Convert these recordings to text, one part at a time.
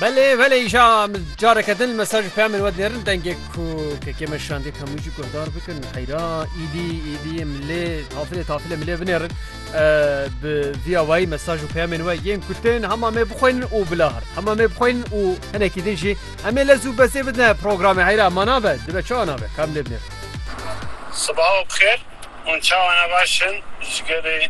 Belê belê îşa min careke din li me ser ji peyamên we dinêrin dengê ku kekê me şandê ka min jî guhdar bikin heyra îdî îdî milê tafilê tafilê milê binêrin bi vîya wayî mesaj û peyamên we yên ku tên hema me bixweynin û bila her hema me bixweynin û hinekî din jî emê lez û bezê bidne programê heyra ma nabe dibe çawa nabe ka milê binêrin. Sibaho bixêr, hûn çawa ne baş in ji gelê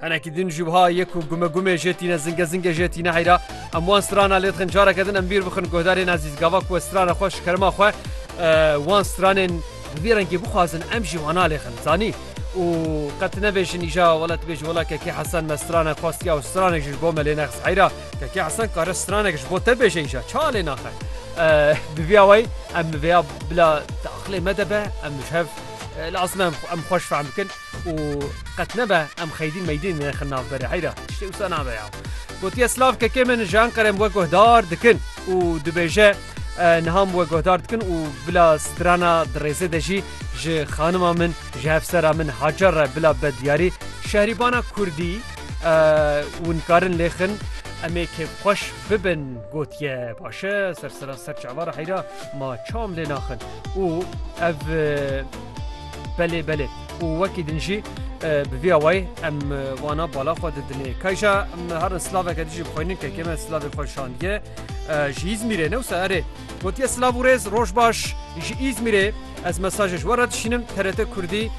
Henekî din jûbha ye ku gumegumê jê tîne zingezingê jê tîne heyra em wan strana lê dixin careke din em bîr bixin guhdarên ezîz gava ku strana xwe ji kerima xwe wan stranên bi vî rengê bixwazin em jî wana lê xin zanî û qet nebêjin îja wela tu bêjî wela kekê hesan me strana xwestiya û stranek ji bo me lê nexs heyra kekê hesan kare stranek ji bo te bêje îja ça lê naxe bi vî awayî em vêya bila te aqilê me de be em ji hev lazim em xweş fehm bikin û qet nebe em xeydîn meydîn nexin nav berê heyra tiştê wisa nabe ya. Gotiye silav kekê min ji Enqere em we guhdar dikin û dibêje niha em we guhdar dikin û bila strana di rêzê de jî ji xanima min ji hevsera min Hacer re bila be diyarî şehrîbana kurdî û nikarin lêxin em ê kêfxweş bibin gotiye baş e sersera ser çavara heyra ma çaw em lê naxin û ev Belê belê û wekî din jî bi vî awayî em wana bala xwe didinê. Kayja em herin silaveke dijî bixwînin kekê me silavê xwe şandiye ji Îzmîrê ne wisa erê gotiye silav û rêz roj baş ji Îzmîrê ez mesajê ji we re dişînim TRT Kurdî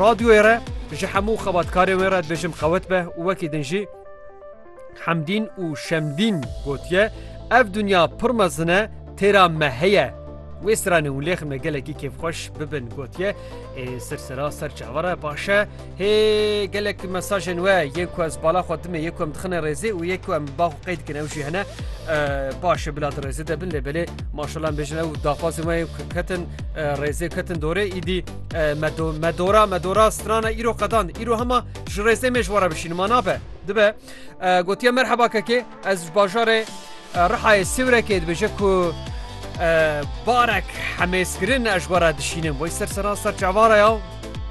Radyoyê re ji hemû xebatkarên wê re dibêjim qewet be û wekî din jî Hemdîn û Şemdîn gotiye, Ev dinya pir mezin e, têra me heye. Wê stranên û lêxin me gelekî kêfxweş bibin gotiye, Ê sirsera ser çavan re baş e. Hê gelek mesajên we yên ku ez bala xwe dimê yê ku em dixine rêzê û yê ku em bax û qey dikin ew jî hene. Baş e bila di rêzê de bin lê belê maşallah em bêjin ew daxwazên we ku ketin rêzê ketin dorê îdî me dora me dora strana îro qedan îro hema ji rêzê mêj were bişînim ma nabe. dibe gotiye merheba kekê ez ji bajarê rihayê sêwrekê dibêje ku barek hemêskirin ez ji wara dişînim boy ser sera ser çavara ya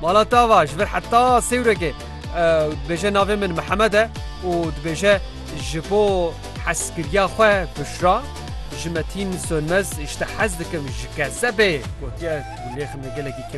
mala tava ji vir heta sêwrekê dibêje navê min mihemed e û dibêje ji bo heskiriya xwe bişra ji metîn sönmez ji te hez dikim ji kesebê gotiye lêxim gelekî kêf